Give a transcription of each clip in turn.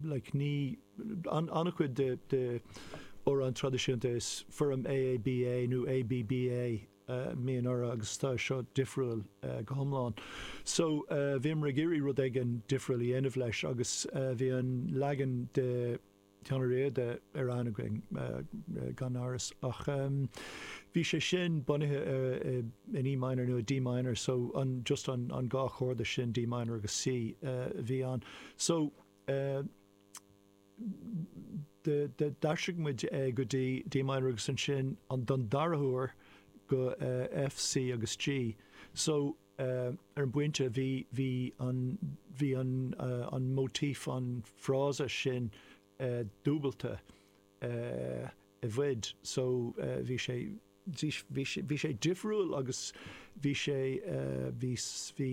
like, ní, an-chuid de amhráin traidisiúnta is foirm AABA nó ABBA a bhíonn orthu agus tá seo difriúil go hiomlán. So, bhíomar ag iarraidh rud éigin difriúil a dhéanamh leis agus bhí an leagan de chuid Sheán Ó Riada ar aithne againn gan amhras ach bhí sé sin bunaithe in E minor nó i D minor so just an dhá chorda sin, D minor agus C, a bhí ann. So. D'aistrigh muid é go dtí A minor agus ansin don dara huair go go F, C agus G. So ar an bpointe bhí bhí an bhí an an motif an frása sin dúbailte eh. i bhfad so bhí sé bhí sé difriúil agus bhí sé bhí bhí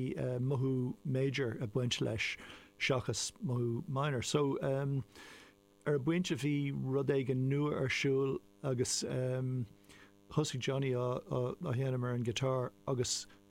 mothú major ag baint leis seachas mothú minor so ar an bpointe bhí rud éigin nua ar siúl agus thosaigh Johnny á dhéanamh ar an guitar agus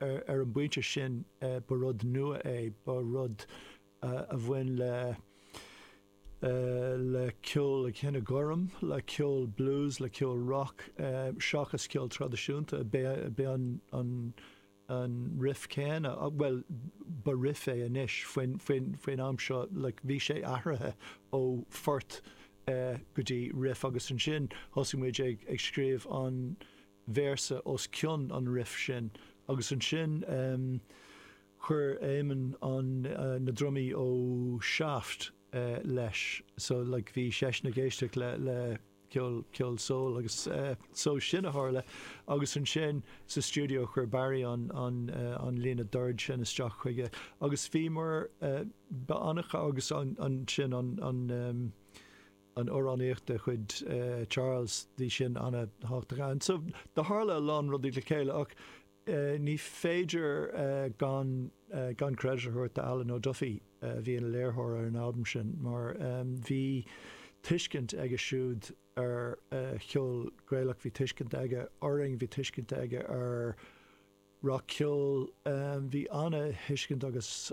Ar an bpointe sin, ba rud nua é, ba rud a bhain le le ceol an chine ghoirm, le ceol blues, le ceol rock, seachas ceol traidisiúnta. B'é an an an riff céanna, bhuel, ba riff é anois, faoin faoin faoin am seo, like, bhí sé athraithe ó phort go dtí riff agus ansin thosaigh muid ag ag scríobh an véarsa os cionn an riff sin agus ansin chuir Eamon an na drumaí ó Shaft leis so like bhí seisean ag éisteacht le le ceol ceol soul agus so sin a tharla agus ansin sa stiúideo chuir Barry an an an líne dord sin isteach chuige agus bhíomar ba annamh agus ansin an an an amhránaíocht de chuid Charles, bhí sin an-thábhachtach ann. So do tharla a lán rudaí le chéile ach ní féidir gan gan credit a thabhairt do Alan O'Duffy a bhí ina léiritheoir ar an albam sin mar bhí tuiscint aige siúd ar cheol Gaelach, bhí tuiscint aige orainn, bhí tuiscint aige ar rac-cheol. Bhí an-thuiscint agus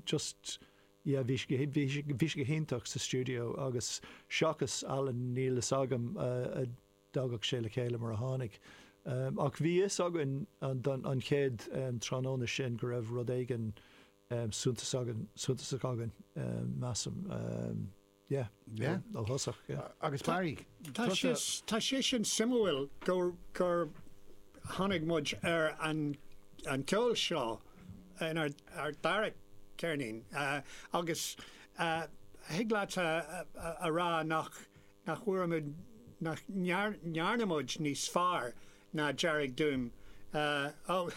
just yeah bhí sé bhí sé go hiontach sa stiúideo agus seachas Alan níl fhios agam an dtagadh sé le chéile mar a tháinig. Ach bhí fhios againn an chéad tráthnóna sin go raibh rud éigin suntas againn, suntasach againn, measaim. Yeah. Yeah. Ó thosach, yeah. Agus Barry, tá sé sin suimiúil gur gur tháinig muid ar an an ceol seo in ar ar dara ceirnín agus thig leat a rá nach nach bhfuair muid, nach ndearna muid níos fearr ná Dearg Doom. Bhuel,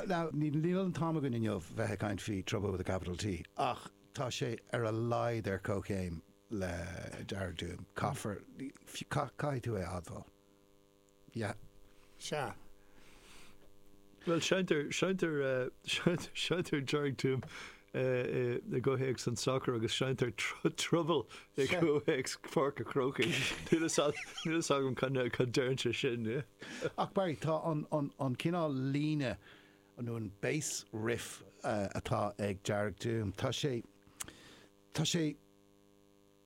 now, níl an t-am againn inniu bheith ag caint faoi Trouble with a capital T ach tá sé ar a laghad ar comhchéim le Dearg Doom. Caithfear, caithfidh tú é a admháil. Yeah. Sea. Bhuel, seinntear, seinntear, seinntear, seinntear Dearg Doom i gcomhthéacs an tsacair agus seinntear Trouble i gcomhthéacs Pháirc a' Chrócaigh. Níl fhios agam, níl fhios agam cad, cad deireann sé sin, yeah. Ach Barry, tá an, an, an cineál líne nó an bass riff atá ag Dearg Doom, tá sé, tá sé,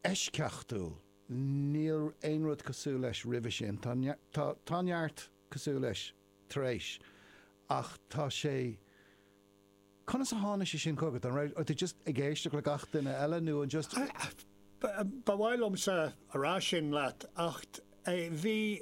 eisceachtúil. Níl aon rud cosúil leis roimhe sin. Tá tá tá neart cosúil leis tar éis ach tá sé conas a tháinig sé sin chugat? An raibh tú just ag éisteacht le gach duine eile nó an just Ba mhaith liomsa a rá sin leat ach bhí.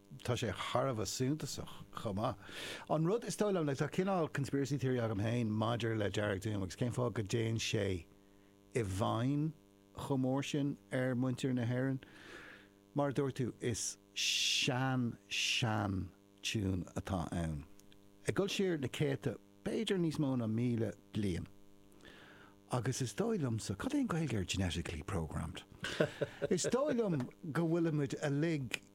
Tá sé thar a bheith suntasach chomh maith. An rud is dóigh liom, like, tá cineál conspiracy theory agam féin maidir le Dearg Doom agus cén fáth go dtéann sé i bhfeidhm chomh mór sin ar mhuintir na hÉireann. Mar a dúirt tú, is sean, sean tiún atá ann, ag dul siar na céadta, b'fhéidir níos mó ná míle bliain. Agus is dóigh liomsa, cad é an Ghaeilge ar genetically programmed? Is dóigh liom go bhfuilimid uilig,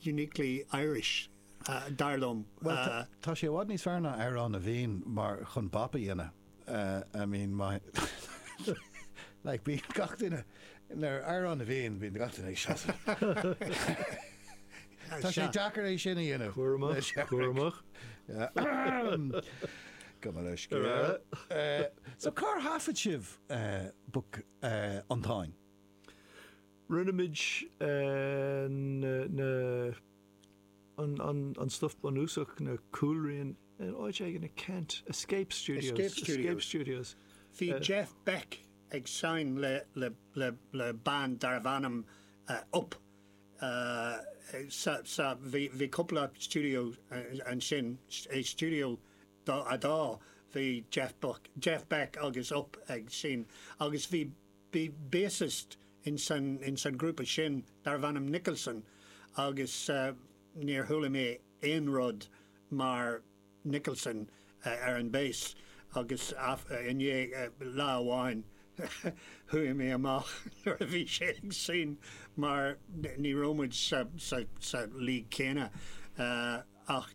uniquely Irish, dar liom. Bhuel, tá sé i bhfad níos fearr ná Amhrán na bhFiann mar, chun bop a dhéanamh, I mean, má, like, bíonn gach duine, nuair, Amhrán na bhFiann, bíonn gach duine ag seasamh. Tá sé deacair é sin a dhéanamh. Cúramach, cúramach. Gabh mo leithscéal. Ar a. So, cár thaifead sibh, eh, book, eh, an Táin? Rinne muid an stuif bunúsach, na cúlrian, in áit éigin i Kent, Escape Studios. Bhí Jeff Beck ag seinm le band darbh ainm Upp sa, bhí cúpla stiúideo ansin, i Stiúideo 2 bhí Jeff Beck agus Upp ag seinm agus bhí, Bhi bassist in san grúpa sin darbh ainm Nicholson agus níor chuala mé aon rud mar Nicholson ar an bass agus i ndiaidh lá amháin chuaigh mé amach nuair a bhí sé ag seinm mar ní raibh muid sa league céanna ach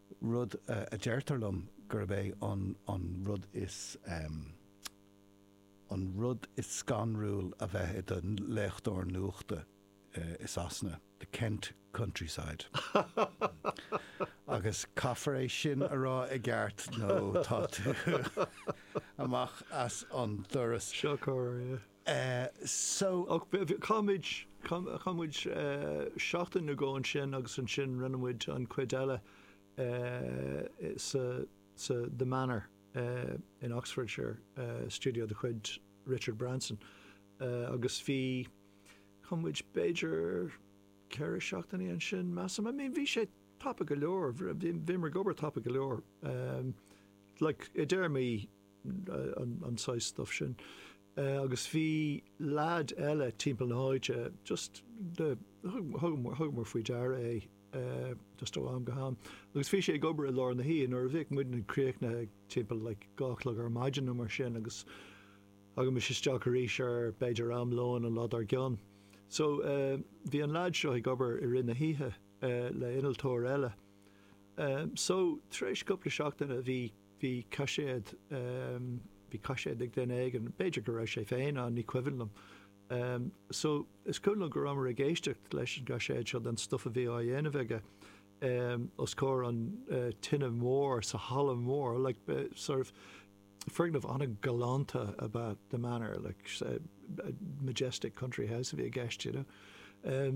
rud a deirtear liom gurb é an an rud is an rud is scanrúil a bheith i do léitheoir nuachta i Sasana, the Kent countryside. Agus caithfear é sin a rá i gceart nó tá tú amach as an doras. Shocair. Eh, so. Ach bhí, bhí, chaith muid, chaith, chaith muid seachtain nó dhó ansin agus ansin rinne muid an chuid eile eh, sa, sa The Manor eh, in Oxfordshire, eh, studio de chuid Richard Branson eh, agus bhí, chaith muid b'fhéidir ceithre seachtainí ansin measaim, I mean bhí sé tapa go leor, bhí, bhíomar ag obair tapa go leor em, like, i dtéarmaí an saghas stuff sin. Agus bhí leaid eile timpeall na háite just thugamar faoi deara é just ó am go ham. Agus bhí sé ag obair i lár na hoíche nuair a bhíodh muidne críochnaithe timpeall like dó a chlog ar maidin nó mar sin agus thagaimis isteach arís ar b'fhéidir am lóin an lá dár gcionn. So bhí an leaid seo ag obair i rith na hoíche le innealtóir eile. So tar éis cúpla seachtaine bhí bhí caiséad, bhí caiséad ag duine éigin, b'fhéidir go raibh sé féin ann, ní cuimhin liom. So, is cuimhin liom go rabhamar ag éisteacht leis an gcaiséad seo den stuff a bhí á dhéanamh aige os comhair an tine mhóir sa halla mór, like, sort of, foirgneamh an-ghalánta ab ea The Manor, like, majestic country house a bhí i gceist, you know.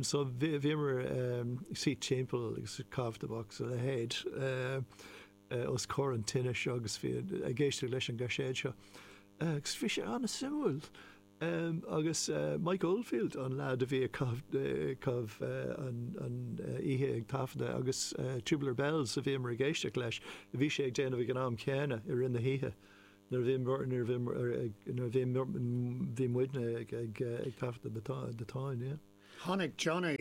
So, bhíomar ag suí timpeall agus caifé Box a leithéid. os comhair an tine seo agus bhí ag éisteacht leis an gcaiséad seo agus bhí sé an-suimiúil agus Mike Oldfield an leaid a bhí ag caitheamh an oíche ag taifeadadh agus Tubular Bells a bhíomar ag éisteacht leis a bhí sé ag déanamh ag an am chéanna i rith na hoíche nuair a bhí bhí muidne ag taifeadadh The Táin. Tháinig Johnny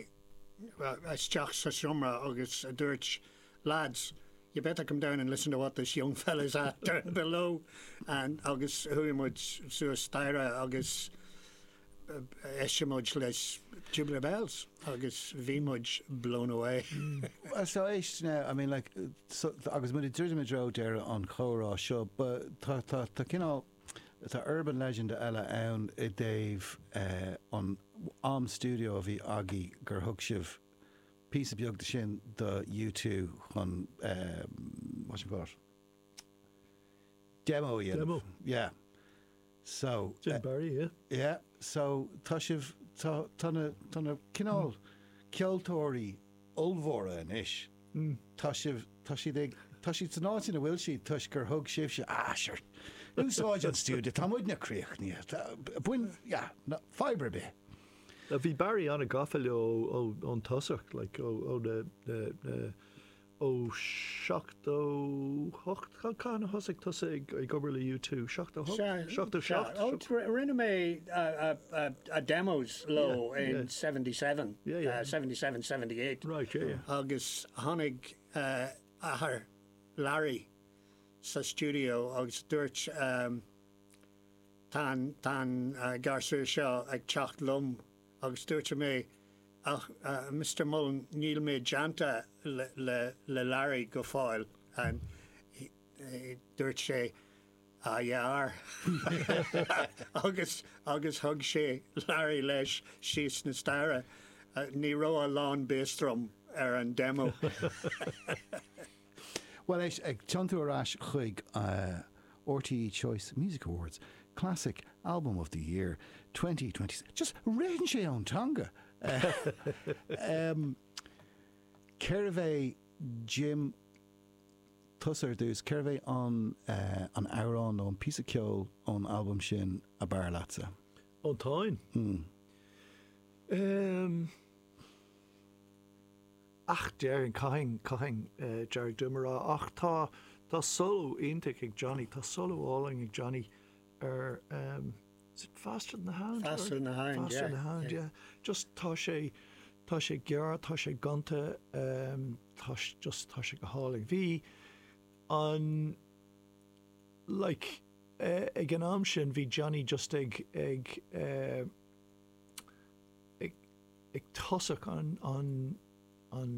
isteach sa seomra agus dúirt Lads, you better come down and listen to what this young fella is at down below and agus chuaigh muid suas staighre agus d'éist muid leis Tubular Bells agus bhí muid blown away. Bhuel so éist now, I mean like so agus muid ag druidim i dtreo deireadh an chomhrá seo but tá tá tá cineál tá urban legend eile ann i dtaobh an am studio a bhí agaidh gur thug sibh píosa beag de sin do U2 chun what's it called? demo a dhéanamh. Demo. Yeah. So. Jim Barry, yeah. Yeah. So tá sibh, tá, tá na, tá na cineál ceoltóirí ollmhóra anois, tá sibh, tá siad ag, tá siad san áit ina bhfuil siad toisc gur thug sibhse, ah sure, úsáid an stiúideo, tá muidne críochnaithe, tá, bain, yeah, ná, faigh ar bith. Bhí Barry an-ghafa leo ón tosach, ó na, ó seachtó hocht, cathain a thosaigh tusa ag obair le U2? Seachtó hocht? Seachtó seacht? Rinne mé demos leo in seventy seven, seventy seven, seventy eight agus tháinig athair Larry sa stiúideo agus dúirt, Tá an garsún seo ag teacht liom agus dúirt mé, Ach, Mister Mullen, níl mé déanta le Larry go fóill. Dúirt sé, Á dhe ar! agus thug sé Larry leis síos na staighre. Ní raibh a lán bass drum ar an demo. Bhuel, éist, ag tiontú ar ais chuig RTÉ Choice Music Awards, Classic Album of the Year 2020, just ritheann sé ón teanga! Cérbh é Jim, tusa ar dtús, cérbh é an an t-amhrán nó an píosa ceoil ón albam sin ab fhearr leatsa? Ón Táin? Ehm. Ach déarfainn, chaithfinn, chaithfinn Dearg Doom a rá. Ach tá, tá solo iontach ag Johnny, tá solo álainn ag Johnny ar ehm, is it Faster Than The Hound? Faster Than The Hound, yeah. Faster Than The Hound, yeah. Just tá sé, tá sé gearr, tá sé gonta, ehm, tá sé, just tá sé go hálainn. Bhí an, like, eh, ag an am sin, bhí Johnny just ag, ag, eh, ag tosach an an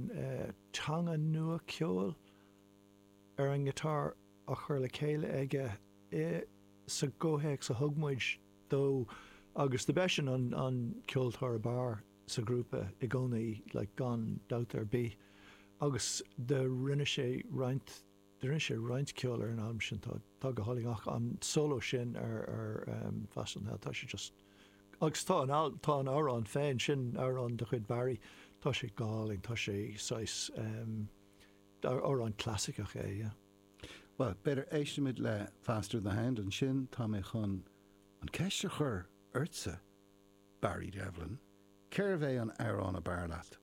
teanga nua ceoil ar an ngiotár á chur le chéile aige i sa gcomhthéacs a thug muid dó agus do b'eisean an an ceoltóir ab fhearr sa ghrúpa i gcónaí like gan dabht ar bith agus do rinne sé roinnt Rinne sé roinnt ceoil ar an albam sin, atá go hálainn ach an solo sin ar Faster than the Hound, tá sé just, agus tá an albam, tá an amhrán féin, sin amhrán de chuid Barry, tá sé go hálainn, tá sé saghas, amhrán clasaiceach é, yeah. Bhuel, b'fhéidir éistfimid le Faster than the Hound, ansin tá mé chun an ceist a chur ortsa, Barry Devlin, cérbh é an amhrán ab fhearr leat